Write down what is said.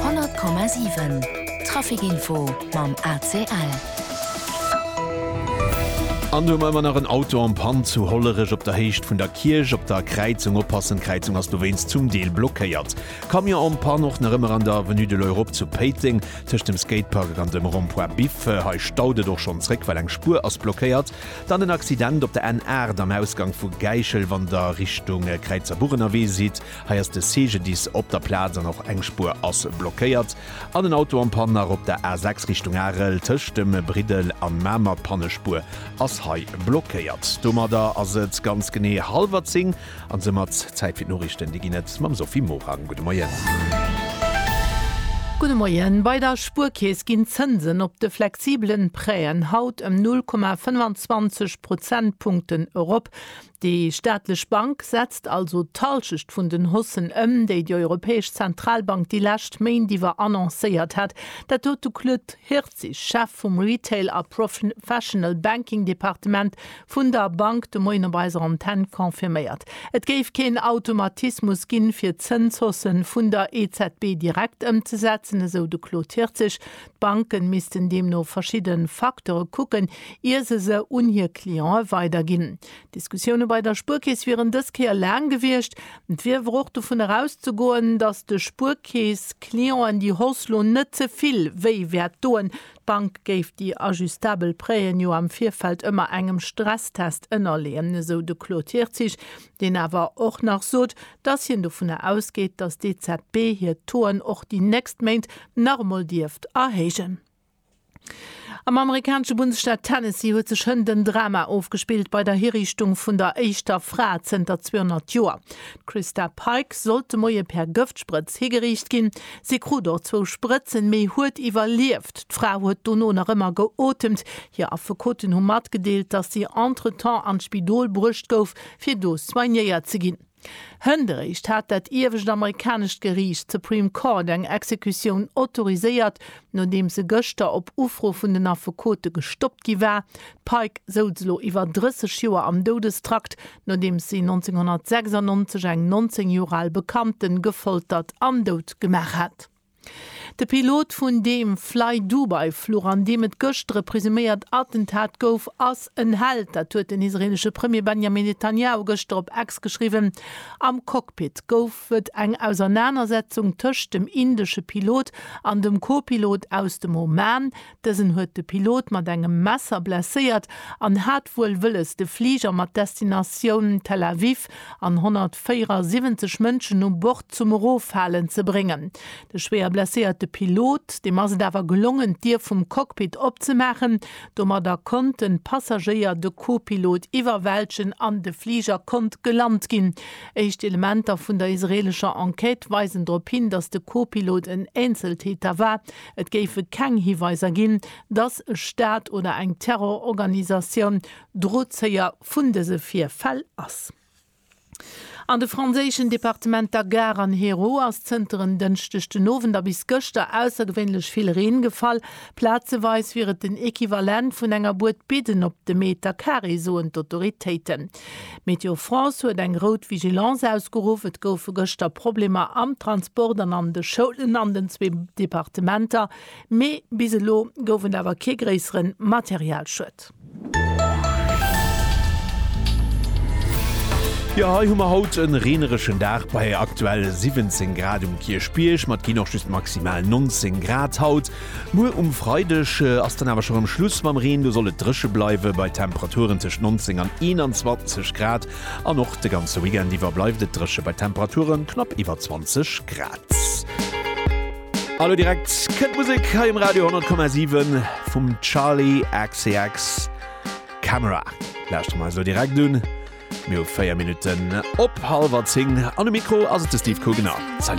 Honnert Komma siwen, Trafikinfo mam ACL. An du mei mer nach en Auto am Pann zu Hollerech op der Héicht vun der Kierch. Op der Kräizung oppassen, d'Kräizung ass dowéinst zum Deel blockéiert. Camion en panne och nach ëmmer an der Avenue de l'Europe zu Péiteng tëscht dem Skatepark an dem Rond-point Biff. Hei staut et och schonn zréck, well eng Spuer ass blockéiert. Dann en Accident op der N8 am Ausgang vu Gäischel, wann der Richtung Kräizerbuch ënnerwee sidd. Hei ass de CGDIS op der Plaz an och eng Spuer ass blockéiert. An en Auto am Panne nach op der A6 Richtung Arel tëscht dem Briddel an Mamer. D'Pannespuer ass hei blockéiert. Domadder ass et ganz genee hallwer 10 an soumat Zäit fir d'Noriichten. Déi ginn et mam Sophie Morang. Gudde Moien. Gudde Moien. Bei der Spuerkeess ginn d'Zënsen op de flexibelen Prêten haut ëm 0,25 Prozentpunkten erop. Déi staatlech Bank setzt also d'Halschecht vun den Haussen ëm, déi déi Europäesch Zentralbank déi lescht Méint iwwer annoncéiert hat. Dat huet de Claude Hirtzig, Chef vum Retail a Professional Banking Departement vun der Bank, de Moien op eiser Antenn confirméiert. Et géif keen Automatismus ginn, fir d'Zënshausse vun der EZB direkt ëmzesetzen, esou de Claude Hirtzig. D'Banken missten deemno verschidde Facteure kucken, ier se se un hir Cliente weiderginn. D'Diskussioune bei der Spuerkeess wieren dës Kéier laang gewiescht. Et wier awer och dovun erauszegoen, datt de Spuerkeess-Clienten déi Hausse lo net ze vill wéi wäert doen. D'Bank géif déi ajustabel Prêten jo am Virfeld ëmmer engem Stresstest ënnerleeën, esou de Claude Hirtzig. deen awer och nach sot, dass hien dovunner ausgeet, dass d'EZB hir Toen och déi nächst Méint nach emol dierft erhéijen. Am amerikanesche Bundesstaat Tennessee huet sech hënt en Drama ofgespillt bei der Hiriichtung vun der éischter Fra zënter 200 Joer. D'Christa Pike sollt de Moie per Gëftsprëtz higeriicht ginn. Si krut och zwou Sprëtzen, mee huet iwwerlieft. D'Fra huet dono nach ëmmer geotemt. Hir Affekoten hu matgedeelt, dass si entretemps an d'Spidol bruecht gouf, fir do soignéiert ze ginn. Hënderéischt hat dat iewescht amerikanescht Geriicht, d'Supreme Court, eng Exekutioun autoriséiert, nodeem se gëschter op Ufro vun den Affekote gestoppt gi war. D'Pike souz elo iwwer 30 Joer am Doudestrakt, nodeems si 1996 eng 19 Joer al Bekannte gefoltert an dout gemaach hat. De Pilot vun deem Flydubai-Fluch, an deem et gëschter e presuméiert Attentat gouf, ass en Held. Dat huet den israeelesche Premier Benjamin Netanjahu gëschter op X geschriwwen. Am Cockpit gouf et eng Ausernanersetzung tëscht dem indesche Pilot an dem Co-Pilot aus dem Oman. Dësen huet de Pilot mat engem Messer blesséiert an hat wuel wëlles de Fliger mat Destinatioun Tel Aviv an 174 Mënschen u Bord zum Eroffalen ze bréngen. De schwéier blesséierte Pilot, deem ass et awer gelongen d'Dier vum Cockpit opzemaachen. Domadder konnten d'Passagéier de Co-Pilot iwwerwältegen an de Fliger konnt gelant ginn. Éischt Elementer vun der israeelescher Enquête weisen drop hin, datt de Co-Pilot en Eenzeltäter war. Et géife keng Hiweiser ginn, datt e Staat oder eng Terrororganisatioun Drozéier vun dëse Virfäll ass. An de franséischen Departementer Gard an Hérault ass zënter en Dënschdeg den Owend a bis gëschter aussergewéinlech vill Reen gefall. Plazeweis wier et den Equivalent vun enger Buedbidden op de Meter Carré, soen d'Autoritéiten. Météo France huet eng rout Vigilance ausgeruff. Et goufe gëschter Problemer am Transport an an de Schoulen an den zwee Departementer, mee bis elo gouf et awer kee gréissere Materialschued. Jo, hei hu mer haut e reenereschen Dag bei aktuell 17 Grad um Kierchbierg. Mer, et ginn och just maximal 19 Grad haut. Muer um Freideg ass dann awer scho rem Schluss mam Reen, do soll et dréche bleiwe bei Temperaturen tëscht 19 an 21 Grad an och de ganze Weekend iwwer bleift et dréche bei Temperature knapp iwwer 20 Grad. A lo direkt kënnt d'Musek hei um Radio 10,7 vum Charli XCX Camera. Lauschter mer eis elo direkt un. Mir hu 4 Minutten op hallwer 10 an um Mikro ass et de Steve Kougener. Salut!